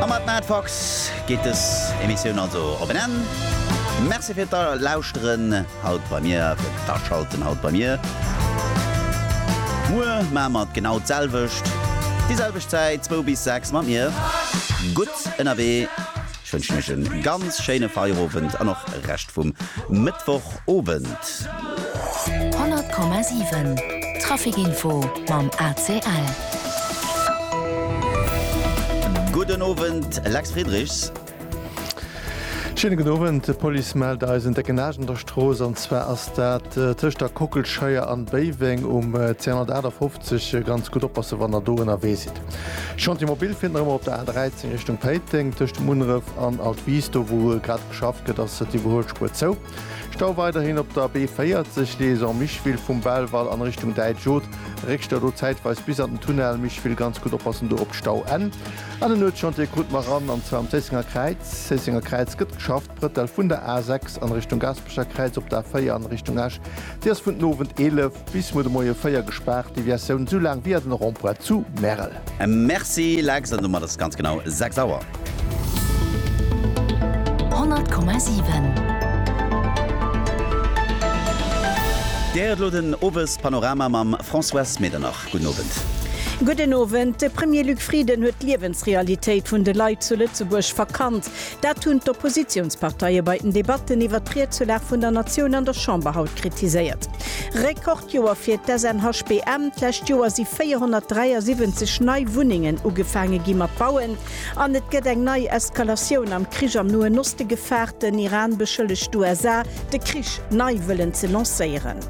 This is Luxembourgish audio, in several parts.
A mat Matt Fox geet dës Emissioun also op en Enn. Merci fir d'Lauschteren haut bei mir, fir d'Aschalten haut bei mir. Muer maache mer et genau d'selwecht, déi selwecht Zäit, zwou bis sechs mat mir. Gutt ënnerwee, ech wënschen iech e ganz schéine Feierowend an och e Rescht vum Mëttwoch. Owend. 100,7 Traficinfo mam ACL. Gudden Owend, Lex Friedrichs. Schéine gudden Owend. D'Police mellt eis en décken Age an der Strooss, an zwar ass dat tëscht der Kockelscheier an Béiweng um 258. Ganz gutt oppassen, wann der do ënnerwee sidd. Chantier Mobil finnt nach ëmmer op der A13 Richtung Péiteng, tëscht dem Unref an Altwies. Do wou grad geschafft gëtt, ass d'Iwwerhuelspuer zou. Stau weiderhin op der B40, Liaison Micheville vum Belval an Richtung Däitsch Oth. Réckstau do zäitweis bis an den Tunnel Micheville. Ganz gutt oppassen do op d'Stauenn. An en Nuetschantier krut mer eran, an zwar am Zéissenger Kräiz. Zéissenger Kräiz gëtt geschafft, Brëttel vun der A6 an Richtung Gaspecher Kräiz op der A4 an Richtung Esch. Si ass vun den Owend 11 bis muer de Moie 4 gespaart, Deviatioun esou laang via den Rond-point zu Märel. Merci Lex, an domat ass et ganz genau 6 Auer. 100,7. Dir héiert elo den Owespanorama mam Françoise Medernach. Gudden Owend. Gudden Owend. De Premier Luc Frieden huet d'Liewensrealitéit vun de Leit zu Lëtzebuerg verkannt. Dat hunn d'Oppositiounsparteie bei den Debatten iwwert d'Riedzulag vun der Natioun an der Chamber haut kritiséiert. Rekordjoer fir d'SNHBM, D'lescht Joer si 473 nei Wunnengen ugefaange gi mat bauen an et gëtt eng nei Eskalatioun am Krich am Noen Oste gefaart. Den Iran beschëllegt d'USA, de Krich nei wëllen ze lancéieren.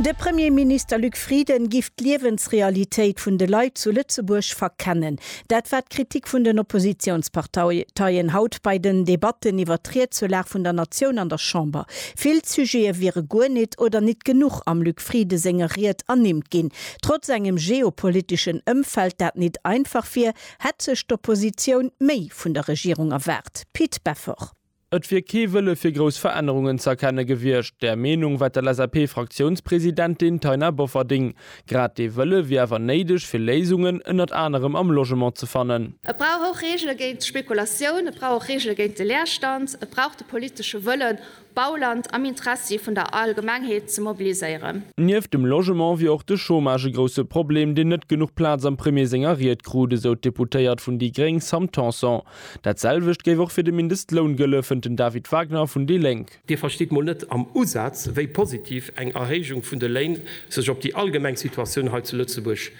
De Premierminister Luc Frieden giff d'Liewensrealitéit vun de Leit zu Lëtzebuerg verkennen. Dat war d'Kritik vun den Oppositionsparteien haut bei den Debatten iwwert d'Riedsulag vun der Natioun an der Chamber. Vill Sujete wiere guer nit oder nit genuch am Luc Frieden senger Ried ernimmt ginn. Trotz engem geopoliteschen Ëmfeld, dat nit einfach wier, hätt sech d'Oppositioun méi vun der Regierung erwaart. Pit Beffort. Et wier kee Wëlle fir grouss Verännerungen ze erkenne gewiescht. Där Meenung war d'LSAP-Fraktiounspresidentin Taina Bofferding. Grad dee Wëlle wier awer néideg, fir Léisungen ënnert anerem am Logement ze fannen. Et brauch och Reegele géint d'Spekulatioun, et brauch och Reegele géint de Leerstand, et brauch de politesche Wëllen, Bauland am Interessi vun der Allgemengheet ze mobiliséieren. Nieft dem Logement wier och de Chômage e grousse Problem, deen net genuch Plaz am Premier senger Ried krut, esou d'Deputéiert vun déi gréng Sam Tanson. Dat selwecht géif och fir de Mindestloun gëlle, fënnt den David Wagner vun déi Lénk. Dir verstitt mol net am Usaz, wéi positiv eng Erhéijung vun de Léin sech op déi allgemeng Situatioun hei zu Lëtzebuerg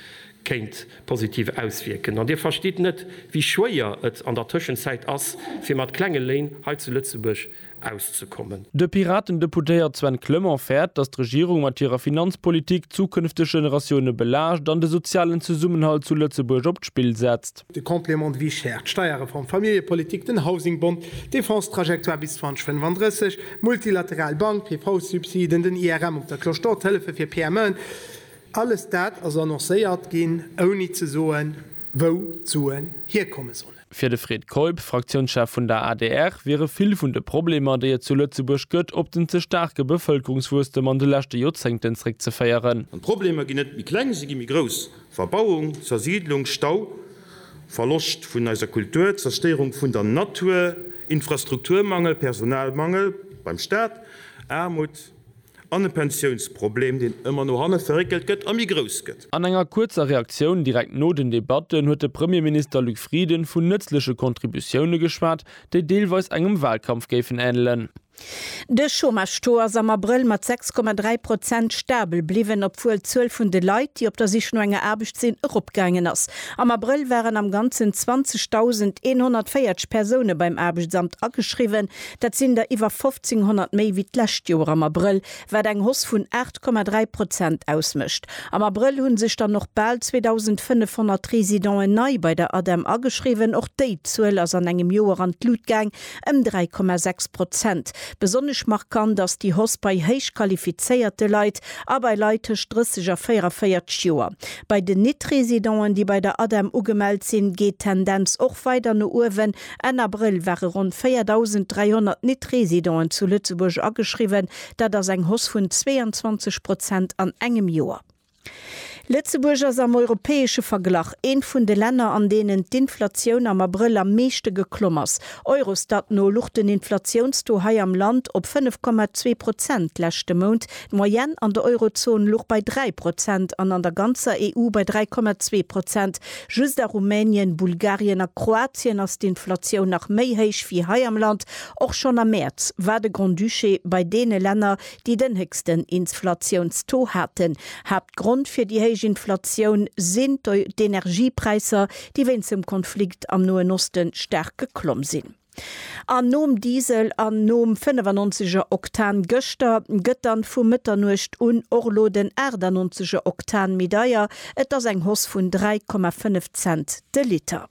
kéint positiv auswierken. An Dir verstitt net, wéi schwéier et an der Tëschenzäit ass, fir mat klenge Léin hei zu Lëtzebuerg auszekommen. De Piraten-Deputéiert Sven Clement fäert, datt d'Regierung mat hirer Finanzpolitik d'zukünfteg Generatioune belaascht an de sozialen Zesummenhalt zu Lëtzebuerg op d'Spill setzt. De Complément de vie chère, d'Steierreform, d'Familljepolitik, den Housingbond, d'Defense-Trajectoire bis 2035, d'multilateral Bank, d'PV-Subsiden, den IRM op der Cloche d'Or, d'Hëllefe fir PMEen, alles dat ass annoncéiert ginn, ouni ze soen, wou d'Suen hierkomme sollen. Fir de Fred Keup, Fraktiounschef vun der adr, wiere vill vun de Problemer, déi et zu Lëtzebuerg gëtt, op den ze staarke Bevëlkerungswuesstem an de leschte Joerzéngten zréckzeféieren. An d'Problemer ginn net méi kleng, se gi méi grouss, Verbauung, Zersiidlung, Stau, Verloscht vun eiser Kultur, Zerstéierung vun der Natur, Infrastrukturmangel, Personalmangel beim Staat, Aarmut. An e Pensiounsproblem, deen ëmmer no hanne verréckelt gëtt a méi grouss gëtt. An enger kuerzer Reaktioun direkt no den Debatten huet de Premierminister Luc Frieden vun nëtzleche Contributioune geschwat, déi deelweis engem Walkampf géifen änelen. De Chômage-Taux ass am Abrëll mat 6,3 Prozent stabel bliwwen, obwuel d'Zuel vun de Leit, déi op der Sich no enger Aarbecht sinn, eropgaangen ass. Am Abrëll waren am Ganzen 20.140 Persoune beim Aarbechtsamt ageschriwwen, Dat sinn der iwwer 1.500 méi wéi d'lescht Joer am Abrëll, wat eng Hoss vun 8,3 Prozent ausmécht. Am Abrëll hu sech dann och bal 2.500 Residenten nei bei der ADEM ageschriwwen. Och déi Zuel ass an engem Joer an d'Lut gaang, ëm 3,6 Prozent. Besonnesch markant ass déi Hoss bei héich qualifizéierte Leit a bei Leit tëscht 30 a 44 Joer. Bei den Nit-Residenten, déi bei der ADEM ugemellt sinn, geet d'Tendenz och weider no uewen, Enn Abrëll ware ronn 4.300 Nit-Residenten zu Lëtzebuerg ageschriwwen, dat ass eng Hoss vun 22 Prozent an engem Joer. Lëtzebuerg ass am europäesche Verglach eent vun de Länner, an deenen d'Inflatioun am Abrëll am meeschte geklomm ass. Eurostat no luch den Inflatiounstaux hei am Land op 5,2 Prozent d'leschte Mount. D'Moyenne an der Eurozon luch bei 3 Prozent an an der ganzer EU bei 3,2 Prozent. Just a Rumänien, Bulgarien a Kroatien ass d'Inflatioun nach méi héich wéi hei am Land. Och schonn am Mäerz war de Grand-Duché bei deene Länner, déi den héchsten Insflatiounstaux haten. Haaptgrond fir déi héich Inflatioun sinn d'Energiepräisser, déi wéinst dem Konflikt am Noen Osten staark geklomm sinn. An nom Diesel an nom 95 er Oktan gëschter, gëtt dann vu Mëtternuecht un och lo den 98 er Oktan méi deier. Et ass eng Hoss vun 3,5 Cent de Liter.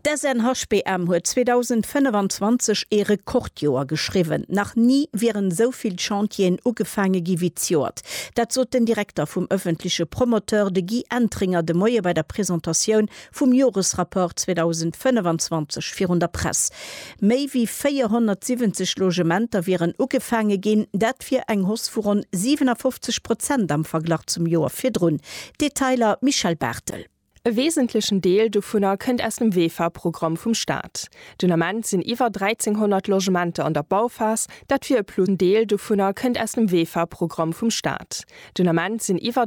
D'Sn HPM huet 2025 ee Rekordjoer geschriwwen. Nach ni wieren esou vill Chantieren ugefaange gi wéi d'Joert. Dat sot den Direkter vum ëffentleche Promoteur, de Guy Entringer de Moie bei der Presentatioun vum Joresrapport 2025 virun der Press. Méi wéi 470 Logementer wieren ugefaange ginn, dat wier eng Hoss vu ronn 57 Prozent am Verglach zum Joer virdrun. Detailer, Michèle Barthel. E wesentlechen Deel dovunner kënnt aus dem VEFA-Programm vum Staat. Den Ament sinn iwwer 1.300 Logementer an der Bauphas, dat wier e Plus. En Deel dovunner kënnt aus dem VEFA-Programm vum Staat. Den Ament sinn iwwer.